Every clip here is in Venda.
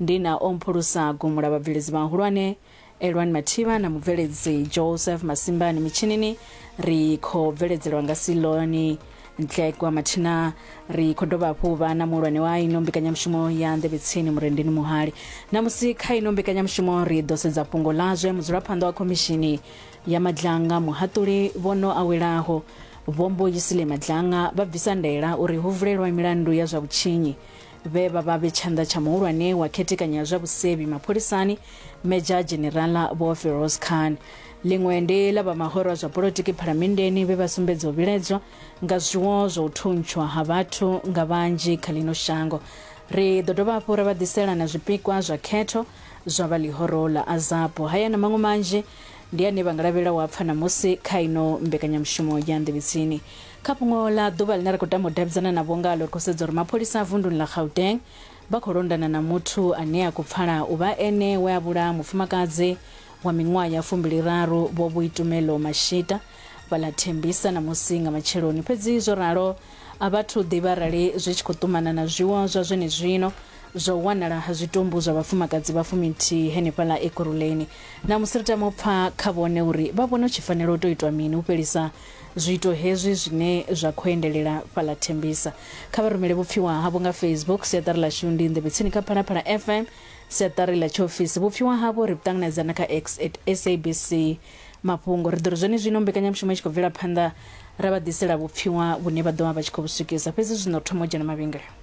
Ndi na o mphulusa gumula vhabveledzi vhahulwane Elwani Mathiba na mubveledzi Joseph Masimbani mitshinini. Ri khou bveledzelwa nga Siloni Ntlekwa mathina. Ri khou dovha hafhu vha na muhulwane wa ino mbekanyamushumo ya Nḓevhetsini Murendeni Muhali. Ṋamusi kha ino mbekanyamushumo ri ḓo sedza fhungo ḽa zwe mudzulaphanḓa wa Khomishini ya Madlanga, Muhaṱuli Vhono Awelaho, Vho Mbuyisile Madlanga vha bvisa ndaela uri hu vulelwa milandu ya zwa vhutshinyi. vhe vha vha vhe tshanḓa tsha muhulwane wa khethekanyo ya zwa vhusevhi mapholisani medzha dzhenerala vho feroz khan ḽiṅwe ndi ḽa vha mahoro a zwa polotiki phalamenndeni vhe vha sumbedza u vhiledzwa nga zwiwo zwa u thuntshwa ha vhathu nga vhanzhi kha ḽino shango ri ḓo dovha hafhu ra vha ḓisela na zwipikwa zwa khetho zwa vha ḽihoro ḽa azapo haya na maṅwe manzhi ndi ane vha nga lavhelela u a pfa ṋamusi kha ino mbekanyamushumo ya nḓevhetsini Kha fhungo ḽa ḓuvha ḽine ra khou tama u davhidzana navho ngaḽo, ri khou sedza uri mapholisa a vunduni ḽa Gauteng vha khou londana na muthu ane a khou pfala u vha ene we a vhulaha mufumakadzi wa miṅwaha ya fumbiliraru Vho Boitumelo Mashita vha ḽa Tembisa ṋamusi nga matsheloni. Fhedzi zwo ralo, a vha thu ḓivha arali zwi tshi khou ṱumana na zwiwo zwa zwenezwino zwa u wanala ha zwitumbu zwa vhafumakadzi vha fuminthihi henefhaḽa Ekurhuleni. Ṋamusi ri tama u pfa kha vhone uri vha vhona hu tshi fanela u tou itwa mini u fhelisa Zwiito hezwi zwine zwa khou endelela fhaḽa Tembisa, kha vha rumele vhupfiwa havho nga Facebook, Siaṱari ḽashu ndi Nḓevhe Tsini kha Phalaphala FM, Siaṱari ḽa Tshiofisi. Vhupfiwa havho ri vhu ṱanganedza na kha X at SABC Mafhungo. Ri ḓo ri zwenezwino mbekanyamushumo i tshi khou bvela phanḓa, ra vha ḓisela vhupfiwa vhune vha ḓo vha vha tshi khou vhu swikisa. Fhedzi zwino ri thoma u dzhena mavhengeleni.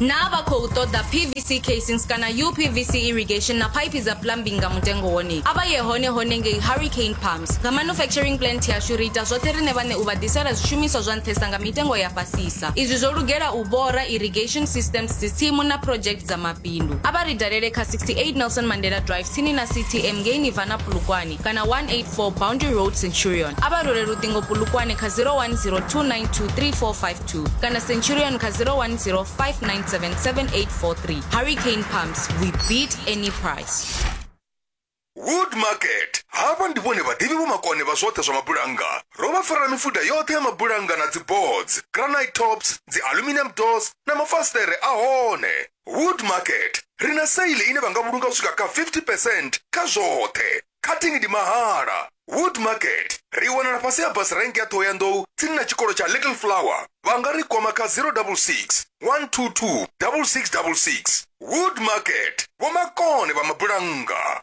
Naa vha khou ṱoḓa PVC casings kana uPVC irrigation na phaiphi dza plumbing nga mutengo wone? A vha ye hone hone ngei Hurricane Pumps. Nga manufacturing plant yashu ri ita zwoṱhe riṋe vhaṋe u vha ḓisela zwishumiswa zwa nṱhesa nga mitengo ya fhasisa. Izwi zwo lugela u bora, irrigation systems, dzitsimu na project dza mabindu. A vha ri dalele kha 68 Nelson Mandela Drive tsini na CTM ngei Nirvana Polokwane kana 184 Boundary Road Centurion. A vha rule luṱingo Polokwane kha 010 292 3456. 2 kana centurion kha 010 5977 hurricane pumps we beat any price wood market havha ndi vhone vhaḓivhi vhomakone vha zwoṱhe zwa mabulannga ro vha farela mifuda yoṱhe ya mabulannga na dziboards granite tops dzi aluminium doors na mafasiṱere a hone wood market ri na saili ine vha nga vhulunga u swika kha 50 percent kha zwoṱhe cutting ndi mahala wood market ri wanala fhasi ha bus rank ya ṱhohoyanḓou tsini na tshikolo tsha little flower vha nga ri kwama kha 066 122 6666 wood market vhomakone vha mabulannga